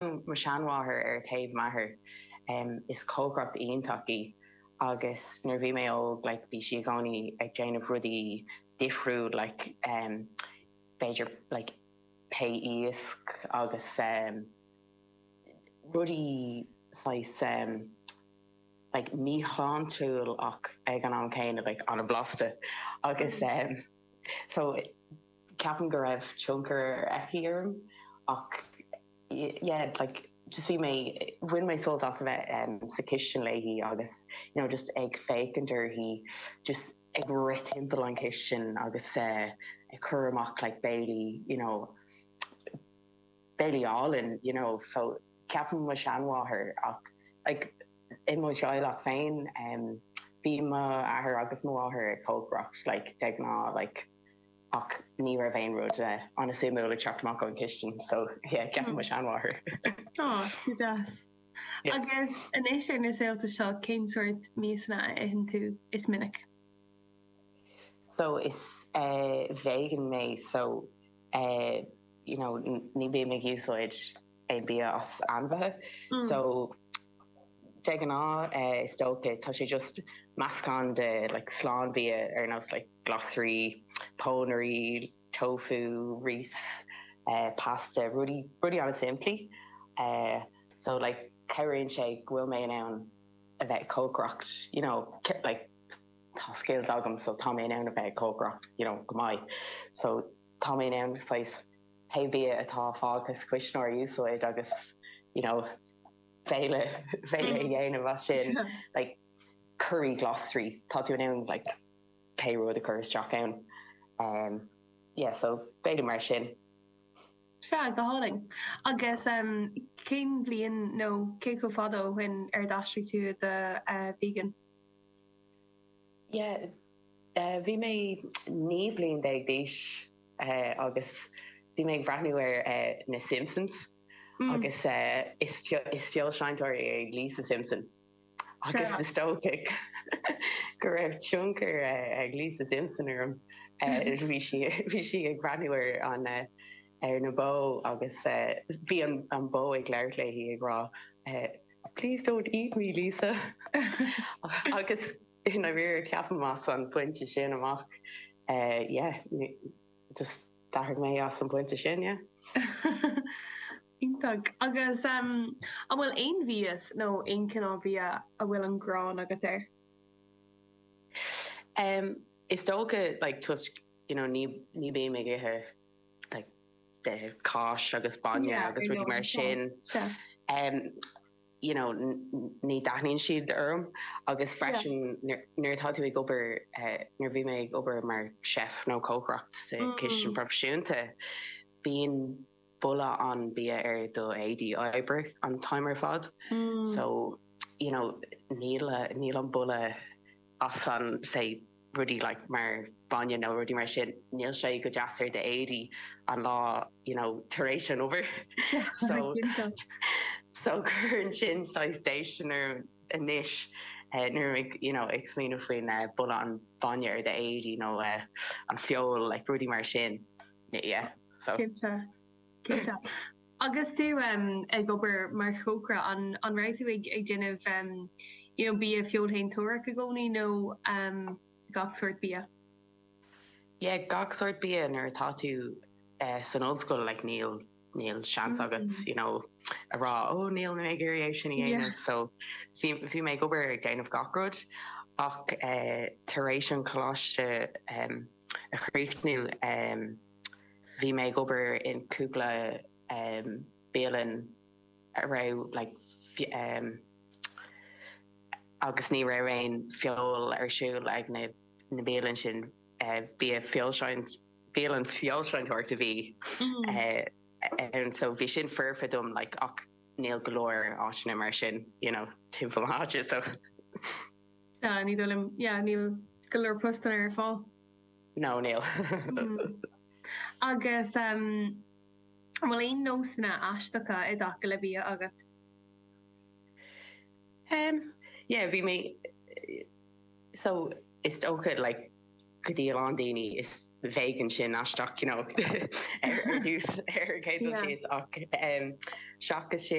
mo sheanmháthair ar taobh m'athar. Is cócaire iontach í agus nuair a bhí mé óg like bhí sí i gcónaí ag déanamh rudaí difriúil like b'fhéidir like pie iasc agus rudaí saghas like míshláintiúil ach ag an am céanna like an-bhlasta agus so Ceapaim go raibh tionchar aici orm ach yeah like just bhí mé, bhain mé sult as a bheith sa chistin léi agus you know just ag féachaint uirthi just ag rith timpeall an chistin agus ag cur amach like béilí you know béilí álainn you know so ceapaim mo sheanmháthair ach like i mo theaghlach féin bhí m'athair agus mo mháthair ag cócaireacht like de ghnáth like. ach ní raibh aon rud ana suimiúil ag teacht amach ón chistin so yeah ceapaim mo sheanmháthair. Tá, go deas. Agus anois ar na saolta seo cén sórt miasa a itheann tú is minice? So is vegan mé so you know ní bím ag úsáid aon bia as ainmhithe so de ghnáth is dócha tá sé just meascán de like slánbhia ar nós like glasraí, pónairí, tofu, rís, pasta, rudaí rudaí ana simplí so like cabhraíonn sé go bhfuil mé in ann a bheith ag cócaireacht you know like tá skills agam so tá mé in ann a bheith ag cócaireacht you know go maith so tá mé in ann saghas Pé bia atá fágtha sa chuisneoir, úsáid agus you know béile béile a dhéanamh as sin. Like curry glasraí, tá tú in ann like pé rud a chur isteach ann. Umm yeah so béilí mar sin. Sea, go hálainn. Agus umm cén bhliain nó cé chomh fada ó shoin ar d'aistrigh tú i do vegan? Yeah, bhí mé naoi mbliana déag d'aois agus bhí mé ag breathnú ar na Simpsons agus is feoilséantóir í Lisa Simpson agus is dócha go raibh tionchar ag Lisa Simpson orm. Bhí sí ag breathnú ar na bó agus bhí an bó ag labhairt léi ag rá, Please don't eat me Lisa agus i ndáiríre ceapaim as an bpointe sin amach yeah just d'athraigh mé as an bpointe sin yeah. Iontach agus an bhfuil aon mhias nó aon cineál bia a bhfuil an ghráin agat air? Is dócha like toisc you know ní bím ag ithe like cáis agus bainne agus rudaí mar sin you know ní dtaitníonn siad orm agus freisin nuair atá tú ag obair nuair bhí mé ag obair mar chef nó cócaireacht sa chistin proifisiúnta bíonn boladh an bia ar do éadaí oibre an t-am ar fad so you know níl an boladh as an say rudaí like mar bainne nó rudaí mar sin, níl sé go deas ar d'éadaí an lá you know tar éis an obair so so cuireann sin saghas déistean orm anois nuair a bhfuil you know ag smaoineamh faoin boladh an bainne ar d'éadaí nó an feoil like rudaí mar sin yeah so. Cinnte. Agus tú ag obair mar chócaire, an raibh tú ag déanamh you know bia feoilséantórach i gcónaí nó gach sórt bia? Yeah, gach sórt bia nuair atá tú san ollscoil, like níl níl seans agat you know a rá ó níl mé ag iarraidh é sin a dhéanamh so bhí bhí mé ag obair ag déanamh gach rud. Ach tar éis an coláiste a chríochnú, Bhí mé ag obair i gcúpla bialann a raibh agus ní raibh aon feoil ar siúl ag na bialann sin. Bialann feoilséantóireacht a bhí ann so bhí sin foirfe dom ach níl go leor áiteanna mar sin timpeall na háite so. Ní dóigh liom, yeah, níl go leor postanna ar fáil. No, níl. Agus an bhfuil aon nósanna aisteacha i dtaca le bia agat? Em, yeah, bhí mé, so, is dócha, like, go dtí a lán daoine is vegan sin aisteach, you know, ar dtús, ar an gcéad dul síos, ach, em, seachas sin,